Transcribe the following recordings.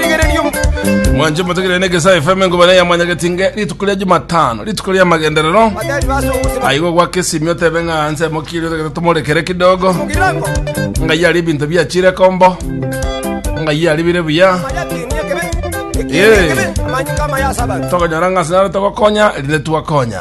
Rigereria omo- mwanche motegerere na egesae fm engobana ya mwanyagetinge rituko ria jumatano rituko ria magenderero Abadari base obusiba. aigo gwaka esimi otebe ng'a nse mokiri otagete tomorekere kidogo Mugirango. ngai ari ebinto biachire kombo ngai ari bire buya Amayatinia kebe. Ekinia Yeah. kebe. Amanyinga amayasa abantu. tokonyora ng'a sinare togokonya rinde twakonya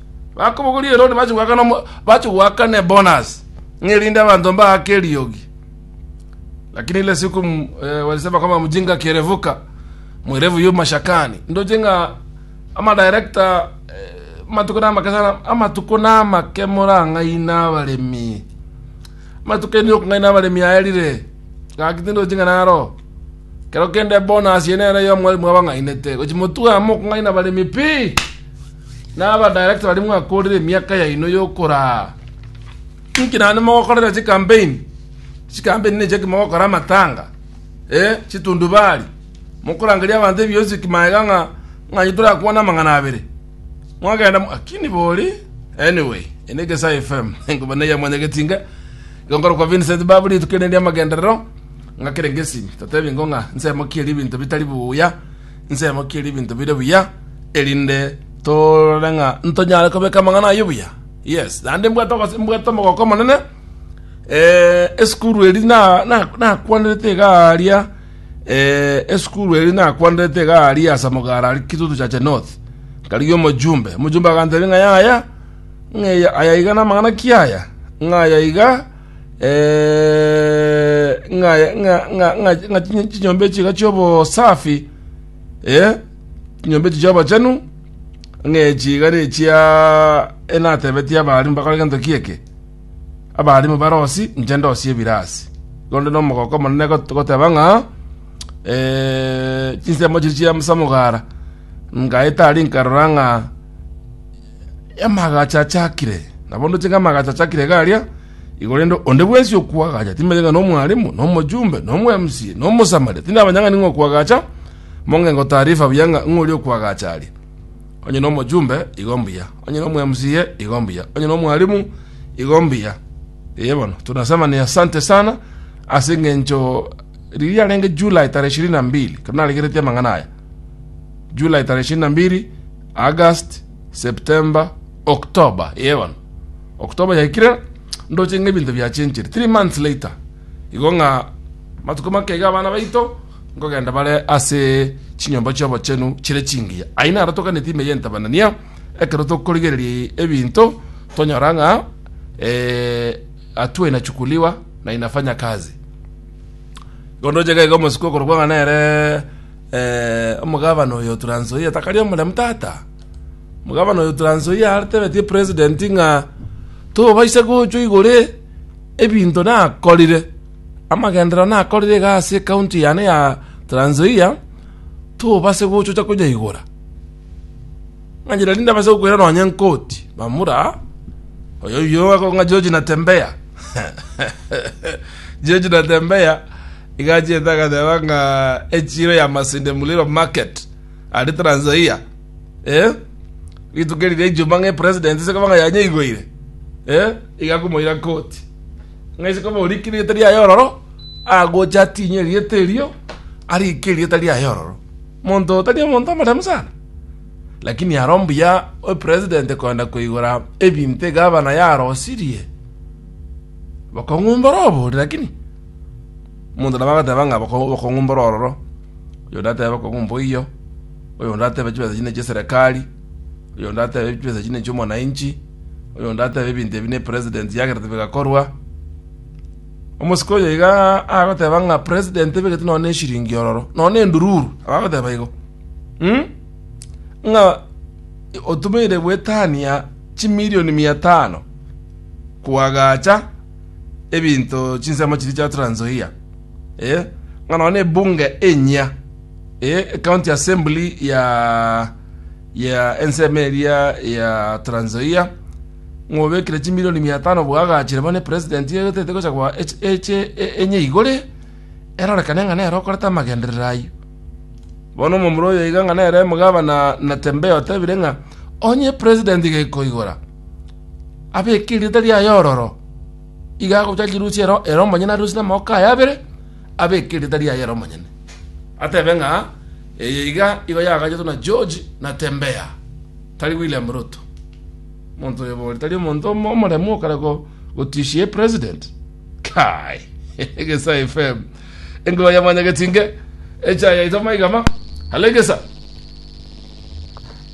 Bakobogoria Herode bache goakana omo- bache goakana ebonus ng'a erinde abanto mbaake eriogi. Lakini ile siku m- eh, walisema kwamba mjinga akierevuka mwerevu yu mashakani ndoche ng'a amadirekta eh, amatuko namake sana amatuko namake morang'aina abaremi amatuko ende okong'aina abaremi aerire gaki tindoche ng'a naro kero kende bonus yene ere yo mwari mwabang'ainete gochi motwe amo okong'aina abaremi pi Na aba director baria mwakorire emiaka yaino yokoraa inki naende mogokorera chikampeni chikampeni nechi eki mogokora amatanga eh chitundubari mokorangeria abanto ebionsi ki maega ng'a ng'a inye torakwane amang'ana abere mwagenda mo akini bori anyway ene egesae fm enkuba neye mwanyageti inga igo nkorokwa Vincent babu rituko erinde amagenderero ng'a kere ngesimi totebi ingo ng'a nse mokieri ebinto bitari buya Inse mokirie ebinto bire buya, erinde torore ng'a ntonyare kobeka amang'ana ayio buya. Yes, naende mbwate ogose- mbwate omogoko omonene eh, esukuru eri na- na- nakwanderete iga aaria eh, esukuru eri nakwanderete iga aaria ase amagara aria kitutu chache north nkarigia omojumbe omojumbe agantebia ng'a yaya ng'a aya iga namang'ana ki aya ng'a aya iga ng'a chinyomba echi iga chiobosafi chinyomba echi chiobochenu ng'a echi iga nechia enatebetie abarimu bakore gento kieke abarimu barosi inche ndosie ebirasi igonde na omogoko omonene goteba ng'a chinsemo chiria chia samugara ngaeta aria nkarora ng'a Amagacho achakire, nabo ndoche ng'a amagacho achakire iga aria igoro rende onde bwensi okwagacha, timanyeti ng'a nomwarimu, nomojumbe, nomweMCA, nomosamaria, tindi namanya ng'a ning'o okwagacha, monge ngotaarifa buya ng'a ng'o oria okwagacha aria. Onye nomojumbe, igo mbuya. Onye nomweMCA, igo mbuya. Onye nomwarimu, igo mbuya. Eye bono, tunasema ni asante sana, ase eng'encho riria yarenge July tarehe ishirini na mbili, ekero naregeretie amang'ana aya, July tarehe ishirini na mbili, August, September, October, yee bono October yaikire ndoche ng'a ebinto biachenchire. Three months later, igo ng'a matuko make iga abana baito nkogenda bare ase chinyomba chi'obochenu chire chingiya. Ayio naro toganeti ime y'entabanania ekero tokorigereria ebinto tonyora ng'a eh, hatua inachukuliwa na inafanya kazi. Igo ndoche iga iga omosike okorokwa ng'a nere Eh, omogabana oyo Transoia takari omoremu tata. Omogabana oyo Transoia atebetie president ng'a tobaisa gochwa igore ebinto nakorire amagenderero nakorire iga ase county yane ya Transoia tobase gochocha konyaigora. Ng'anyire rinde abase gokwera nonye nkoti bamura oyo oyo akong'a George Natembea George Natembea Igachiete agateba ng'a echiro ya Masinde Muliro market aria Trans Nzoia eh, rituko riria Ijumaa ng'a epresident ase koba ng'a yanyeigoire eh, iga komoira koti ng'a ase koba orike erieta riaye ororo agocha atinye erieta erio arike erieta riaye ororo. Monto oyo tari omonto omoremu sana lakini aro mbuya epresident koenda koigora ebinto egavana yarosirie bokong'u mboro obore lakini Omonto nabo agateba ng'a bokong'u mboro ororo, oyonde atebe bokong'u mboiyo, oyonde atebe chibesa echi nechie serekari, oyonde atebe chibesa echi nechio omwananchi, oyonde atebe ebinto ebi ne president yagerete bigakorwa. Omosike oyo iga agoteba ng'a president ebegete nonye na eshiringi ororo, nonye na endururu, abagoteba igo mm? ng'a otumeire goetania chimilioni mia tano koagacha ebinto chinsemo chiria chia Trans Nzoia, eh, ng'a nonya na ebunge enyia, eh, ecounty assembly ya ya ensemo eria ya Trans Nzoia, ng'obekire chimilioni mia tano bwagachire bono epresident egotete gocha kwa eche eche e- enye igore, erorekane ng'a nere okorete amagenderero ayio. Bono omomura oyo iga ng'a nere omogabana Natembeya otebire ng'a onye president gekoigora, abeke erieta riaye ororo, iga agocha chirusi ero ere omonyene arusie namagoko aye abere, abeke erieta riaye ere omonyene, atebe ng'a eye iga igo yagachetwe na George Natembeya, tari William Ruto. Monto oyo bori tari omonto omo- omoremu okare go- gotishia epresident. Kai! Egesa FM. Engoa ya Mwanyagetinge. Echa yaito maiga ma. Halo Egesa.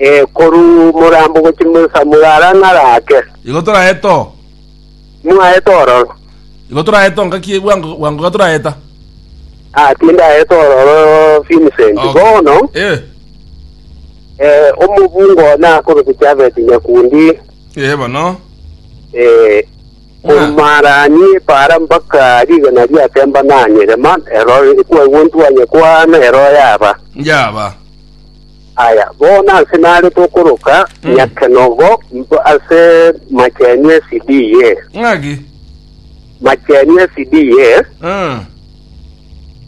Ee, korwa omorambo gochia mosamura ara naro ake. Igo toraeta oo. Mwaeta ororo. Igo toraeta oo ngaki bwango bwango iga toraeta. Ah, tindaeta ororo Vincent. Okay. Bono, Eh. eh, omobunga oo nakobe gochia abete Nyakundi, Eh bono. eh, Ah. korumaranie para mpaka rigena riatemba nanyerema, ero kwaigwa ntwanye kwana, ero yaba. Njaba. Aya, bono ase nare tokoroka nyakenogo mb- ase machenu esidiye, Ng'aki? machenu esidiye, Ah.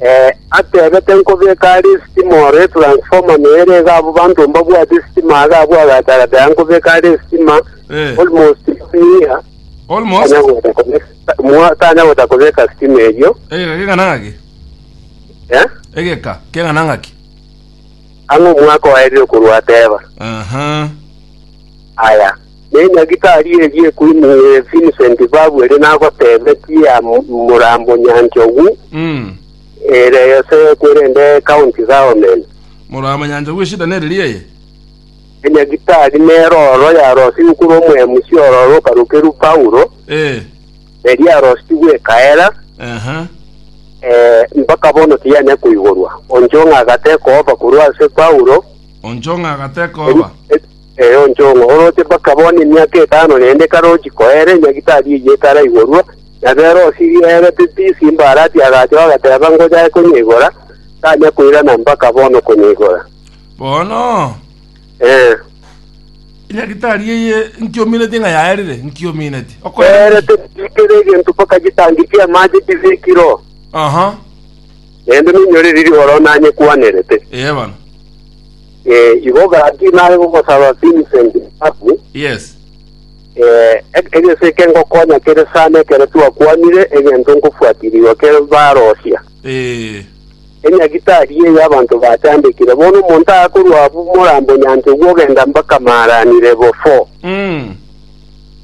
eh, atebete nkobeka are esitima ore transformer noere iga abo banto mbabwate esitima aga abwagatarata nkobeka are esitima Eh. almost year Almost. tanya goeta kobeka mwa- tanya goeta kobeka sitima erio Egeka keng'ana ng'aki? eh? Egeka keng'ana ng'aki? Ang'o omwaka oerirwe korwa Ateba? Aha. Aya, nenyagitari erie Queen eh, Vincent Babu erio nagotebetie am- morambo Nyanchogu Mm. ere yose kwerende county government. Morambo Nyanchogu eshida nere ria eye. Enyagitari nero oro yarosigwe korwa omoemusi ororo okarokerwa Paulo Eh. eria yarositigwe ekaera, Aha. eh, mpaka bono tiyanya koigorwa. Onchong'a agateka oba korwa ase Paulo, Onchong'a agateka eri- oba. e- eh, onchong'a oroche mpaka bono emiaka etano rende karochi koere, nyagitari eyio etaraigorwa, na berosi rierete tisi mbarati agacha bagateba ngojae konyeigora, tanya koirana mpaka bono konyeigora. Bono Eh, Edagitari eye nkiomineti ng'a yaerire, nkiomineti. Okoerire. yaerete tikere egento mpaka chitangi chi'amache chibekire oo, Aha. naende noinyore riria oro nanyekwanerete. Ee bono. Eh, igo gaki nare gogosaba Vincent Mbabu, Yes. eh, e- egese eke ngokonya kere sana ekero twakwanire egento nkofuatirigwa kere barosia. Eh. Enyagitari ye y'abanto bachandekire, bono omonto akorwa abwo morambe onyancha ogwo ogenda mbaka Maarani Lebo 4, Mm.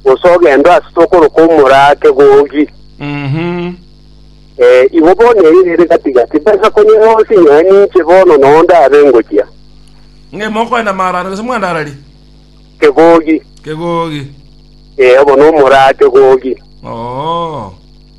gose ogendo ase tokoroka omora ake gogi. Mhm. Ee, igo bono eye ere gati-gati, besa konyora onsi inyoe ninche bono noo ndabe ngochia. Ng'a ime okoenda Maarani gose mwandarari? Kegogi, Kegogi. ee, obo nomora ake gogi. Oo.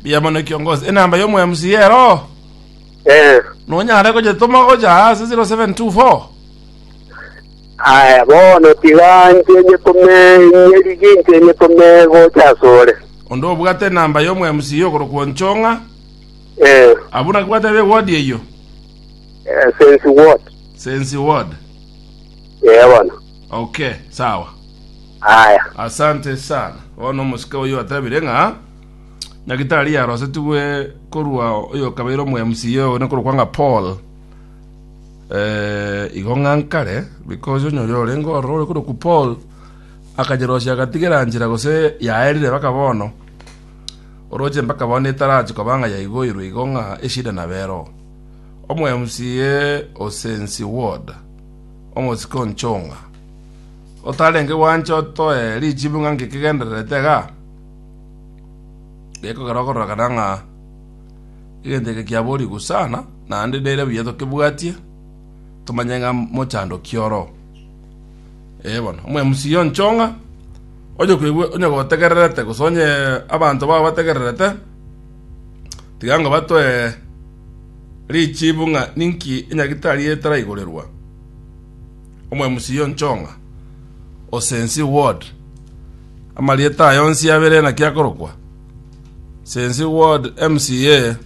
Mbuya mono kiongozi. Enamba ya omo MC ero. Eh, Nonyare gojetoma gocha ase 0724. aya bono tiga nche nyetome nyerigi nche nyetome gocha asore. Onde obwate enamba ya omo MC okorokwa Nchong'a. Eh, Abwo naki bwate be ward eyo. eh, sense what? Sensi ward. Eh bono. Okay, sawa. Aya. Asante sana. Ono musika oyo atabire ng'a Nyagetari yarosetigwe korwa oyokabeire omoMCA one korokwa ng'a Paul eh, igo ng'a nkare because onye oria orenge ororo ore korokwa Paul akanyerosia agatigera nchera gose yaerire mpaka bono oroche mpaka bono etarachi koba ng'a yaigoirwe igo ng'a eshida nabere oo omoMCA Osensi Ward omosike o Nchong'a otarenge gwancha otoe richibu ng'a ngekegendererete igaa Gekogera okororokana ng'a egento eke kiaborigwe sana, naende nere buya tokebwatie, tomanye ng'a mochandoki oro. Ee bono, omwemusiyo nchong'a, onye koigwe onye gotegererete gose onye abanto bao bategererete, tiga ng'a batoe richibu ng'a ninki enyagitari eye etaraiborerwa omwemusiyo nchong'a, osensi ward. Amarieta aye onsi abere naki akorokwa? Sensi ward MCA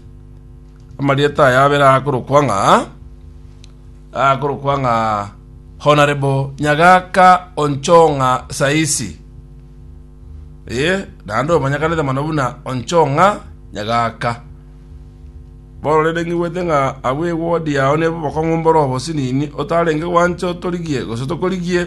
amarieta aye abere akorokwa ng'a akorokwa ng'a Honorable Nyagaka Onchong'a Saisi. Eh, naende omanyekanete mono buna Onchong'a Nyagaka. Bono rende ng'igwete ng'a abwo eward yao nebu bokong'u mboro obosinini otarenge gwancha otorigie gose tokorigie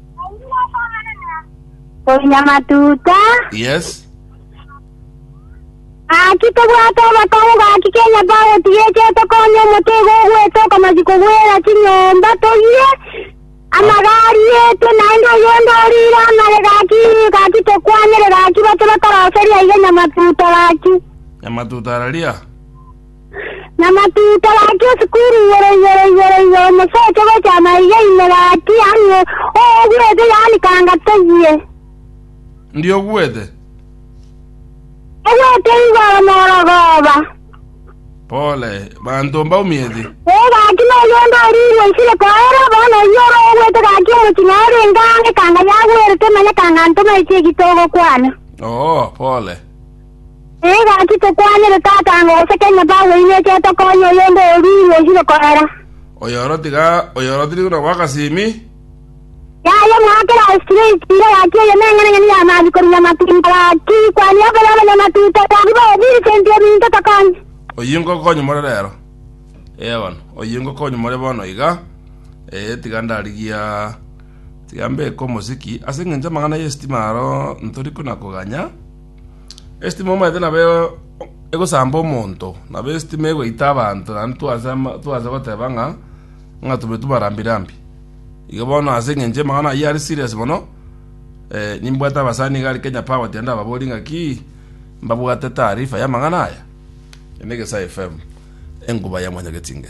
Konya matuta. Yes. Gaki tobwate obotongo gaki kenya twagotigete tokonye omotego ogwete okomachi kogwera chinyomba toyie amagari etwe naende oyonde orire amare gaki gaki tokwanyere gaki bache batoroseria iga nyamatuta gaki. Nyamatuta araria. Na matuta gachia esukuru igoro igoro igoro igoro omosocho gocha amaiga ime gati yaani o- oogwete yaani kanga toyie. Ndi ogwete. Ogwete igoro morogoba. Pole. Banto mbaumieti. Ee gaki noyo onde orirwe isire koera bono oyio ore ogwete gaki omochi na orenge ange kanga yagwerete manya kanga ntoma echi egitogokwana. Oo, pole. Nigo ati tokwanire tata ango gose kenye Paulo inwe ekiagera tokonya oyonde oyoruirwe oi gokorera. Oyoro tiga oyoro tiri buna bw'agasimi. Yaye mwakera Aristariko ira yaki eye neng'enang'eni ya Mariko rinyamatunda gaki kwani obe y'abanyamatuta gaki baye Vincent ebinto tokonya. Oyio ngokonya more rero. Ee bono, oyio ngokonya more bono iga. Ee, tiga ndarigia tiga mbeke omosiki ase engencho y'amang'ana y'esitima aro ntori kona koganya. Esitima omanyete nabo egosamba omonto, nabo esitima egoita abanto naende twansa goteba ng'a ng'a tobetu marambi rambi. Igo bono ase eng'encho amang'ana ayio are serious mono, nimbwate abasani iga are Kenya Power ati naende ababorie ng'aki mbabwate taarifa y'amang'ana aya. Eye n'Egesae FM, enkuba ya mwanyagetinge.